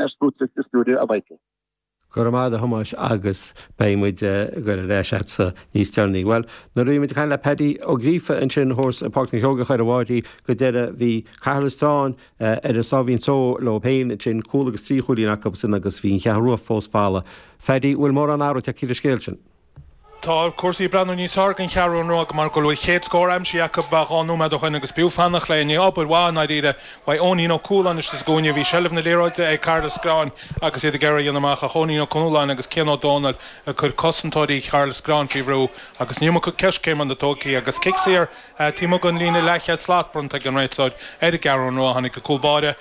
ar Sputnik sa stiúideo i Meice. Go raibh maith agat, a Thomáis, agus beidh muid ag goil ar ais agatsa níos deireanaí. Bhuel, nuair a bhí muid ag caint le Paddy Ó Gríofa ansin thuas i bPáirc na Seoigeach ar an bhFairche go deireadh bhí Cathair Loistreáin ar a sáimhín só leo féin ansin, cúl agus trí chúilín acu sin agus bhí an Cheathrú Rua fós folamh. Phaddy, bhfuil mórán athrú tagtha ar an scéal sin? Tá cúrsaí ag breathnú níos fearr ag an gCeathrú Rua mar go bhfuil chéad scór aimsithe acu le dhá nóiméad ó shin agus b'fhiú fanacht leo i ndiaidh obair mhaith i ndáiríre uaidh Eoinín Ó Cualáin istigh sa gcúinne, bhí seilbh na liathróide ag Cathair Loistreáin agus iad ag iarraidh a dhéanamh amach ach Eoinín Ó Conóláin agus Cian Ó Dónaill ag cur cosantóirí Chathair Loistreáin faoi bhrú agus an iomarca coiscéimeanna tógtha agus cic saor taobh amuigh den líne leathchéad slat bronnta ag an réiteoir ar an gCeathrú Rua. Tháinig an cúl báire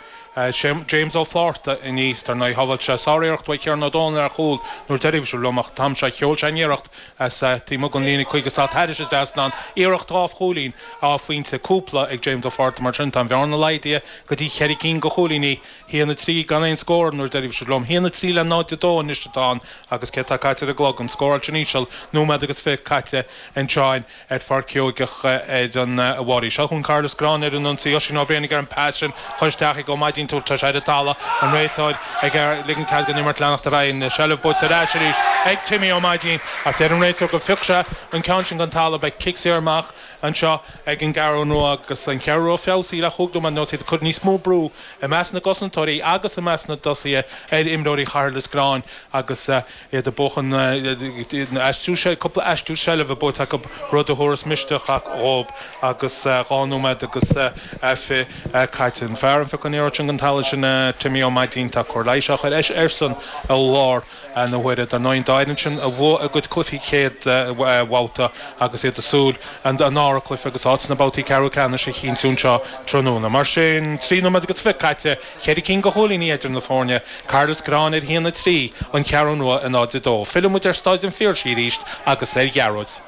James Ó Flaithearta aníos, dar ndóigh shábháil sé sáriarracht uaidh Chiarán Ó Dónaill ar chúl an uair dheiridh a raibh sibh liom, ach an t-am seo sheol sé an iarracht as taobh amuigh den líne 50 slat thairis an trasnán, iarracht dhá chúilín, dhá phointe, cúpla ag James Ó Flaithearta mar sin, tá an bhearna laghdaithe go dtí cheithre cinn de chúilíní, a haon a trí gan aon scór an uair dheiridh a raibh sibh liom, a haon a trí le 0-2 anois atá ann agus céard atá caite ar an gclog, an scóráil an-íseal, nóiméad agus fiche caite anseo in. ar Pháirc Seoigeach ar an bhFairche. Seo chugainn Cathair Loistreáin ar an ionsaí, Oisín Ó Briain ar an bpas sin chun isteach ag Ó Maidín, tuairteáilte ar an talamh, an réiteoir ag ligean cead don imirt leanacht ar aghaidh, an seilbh buaite ar ais arís ag Timmy Ó Maidín ach deir an réiteoir gur phioc sé an ceann sin den talamh, beidh cic saor amach anseo ag an gCeathrú Rua agus an Cheathrú Rua feabhsaithe le chúig nóiméad anuas, iad ag cur níos mó brú i measc na gcosantóirí agus i measc na dtosaithe ar imreoirí Chathair Loistreáin agus iad ag buachan nó a aistriú. Sea, cúpla aistriú seilbhe buaite acu, rud a thabharfas misneach dhóib agus dhá nóiméad agus fiche caite. An fear a phioc an liathróid sin den talamh sin Timmy Ó Maidín, tá cóir leighis á chur airsean i láthair na huaire. Dar ndóigh, an dá fhoireann sin a bhuaigh a gcuid cluichí chéad bhabhta agus iad ag súil an dara cluiche agus áit sna babhtaí ceathrú ceannais a chinntiú anseo tráthnóna. Mar sin, trí nóiméad agus fiche caite. Ceithre cinn de chúilíní idir na foirne, Cathair Loistreáin ar a haon a trí, An Cheathrú Rua náid a dó. Filleann muid ar Staid an Phiarsaigh arís agus ar Ghearóid.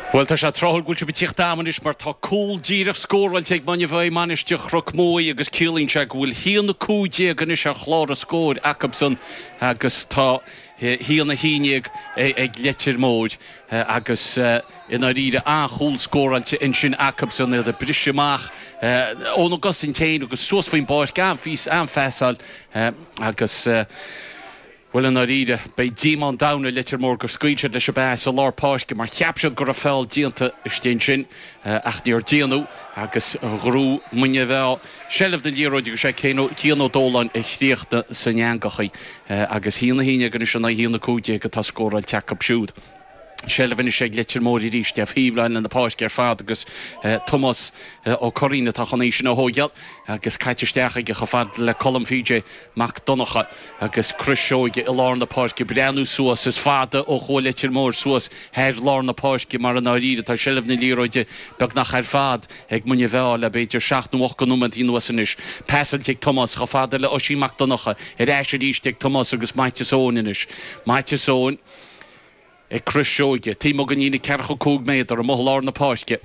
Bhuel, tá sé tráthúil go bhfuil sibh ag tíocht agam anois mar tá cúl díreach scóráilte ag Muine Mheá Mainistir Chnoc Muaidhe agus ciallaíonn sé go bhfuil a haon a cúig déag anois ar chlár an scóir acusan agus tá hAon a haon déag ag Leitir Móir agus i ndáiríre an-chúl scóráilte ansin acubsan, iad ag briseadh amach óna gcosaint féin agus suas faoin bpáirc, an-phas, an-phasáil agus, bhuel i ndáiríre, beidh díomá an domhain ar Leitir Móir gur scaoil siad leis an bpas i lár páirce mar cheap siad go raibh feall déanta istigh ansin ach níor déanadh agus ghread Muine Mheá seilbh na liathróide agus é Cian Ó Dóláin a chríochnaigh san eangach í agus haon a haon déag anois in aghaidh haon a cúig déag atá scóráilte acu siúd. Seilbh anois ag Leitir Móir arís ar thaobhlíne na páirce ar fad agus Tomás Ó Curraoin atá chun é sin a thóigeáil agus caite isteach aige chomh fada le Colm PJ Mac Donnacha agus Crois Seoige i lár na páirce ag breathnú suas. Is fada ó chuaigh Leitir Móir suas thar lár na páirce mar i ndáiríre tá seilbh na liathróide beagnach ar fad Ag Muine Mheá le b'fhéidir seacht nó ocht nóiméad anuas anois. Pasáilte ag Tomás chomh fada le Oisín Mac Donncha. Ar ais arís ag Tomás agus Maitias Eoin anois. Maitias Eoin ag crois Seoige. Taobh amuigh den líne ceathracha cúig méadar amuigh lár na páirce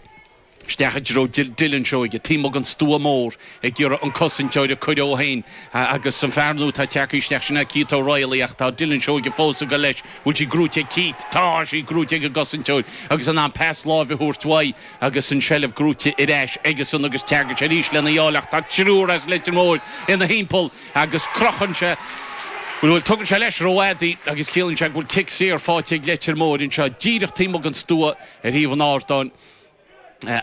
isteach i dtreo Dylan Seoige. Taobh amuigh den stua mór ag iarraidh an cosantóir a chur dhó féin agus an fear nua atá ag teacht isteach sin ná Keith O'Reilly ach tá Dylan Seoige fós ag dul leis. Bhfuil sí gnóite ag Keith? Tá sí gnóite ag an gcosantóir agus in ann pas láimhe a thabhairt uaidh Agus an tseilbh gnóite ar ais aigesan agus tagann sé arís lena bhealach, tá triúr as Leitir Móir ina thimpeall agus crochann sé go bhfuil, tugann sé leis rófhada agus ciallaíonn sé go bhfuil cic saor faighte ag Leitir Móir anseo, díreach taobh amuigh den stua ar thaobh an ardáin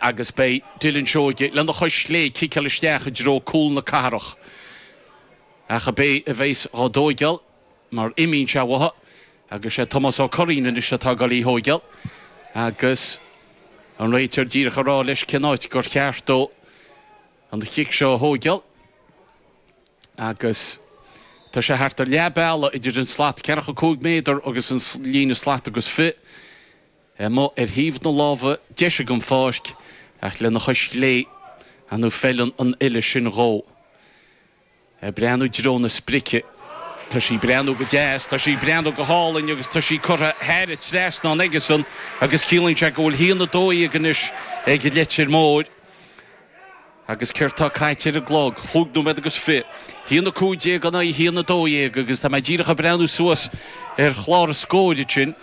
agus beidh Dylan Seoige lena chois chlé ag ciceáil isteach i dtreo cúl na cathrach. Ach ab é a bheas dhá tóigeáil? mar imíonn sé uathu, agus sé Tomás Ó Curraoin anois atá ag dul í a thóigeáil, agus an réiteoir díreach ag rá leis cén áit gur cheart dó an chic seo a thóigeáil, agus tá sé thart ar leath bealaigh idir an slat ceathracha cúig méadar, agus an líne slat agus fiche, amuigh ar thaobh na láimhe deise den pháirc, ach lena chois chlé, an bhfeileann an uille sin dhó? ag breathnú i dtreo na sprice. Tá sí ag breathnú go deas, tá sí ag breathnú go hálainn agus tá sí curtha thar an trasnán aigesan agus ciallaíonn sé go bhfuil haon a dó dhéag anois ag Leitir Móir. Agus céard tá caite ar an gclog? Chúig nóiméad agus fiche. Haon a cúig déag in aghaidh haon a dó dhéag agus tá mé díreach ag breathnú suas ar chlár an scóir ansin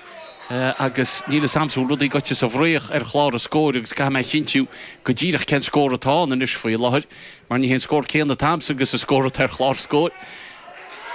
agus níl fhios a'msa, bhfuil rudaí gaibhte sa bhfraoch ar chlár an scóir agus caithfidh mé a chinntiú go díreach cén scór atá ann anois faoi láthair. Mar ní hé an scór céanna atá agamsa agus an scór atá ar chlár an scóir.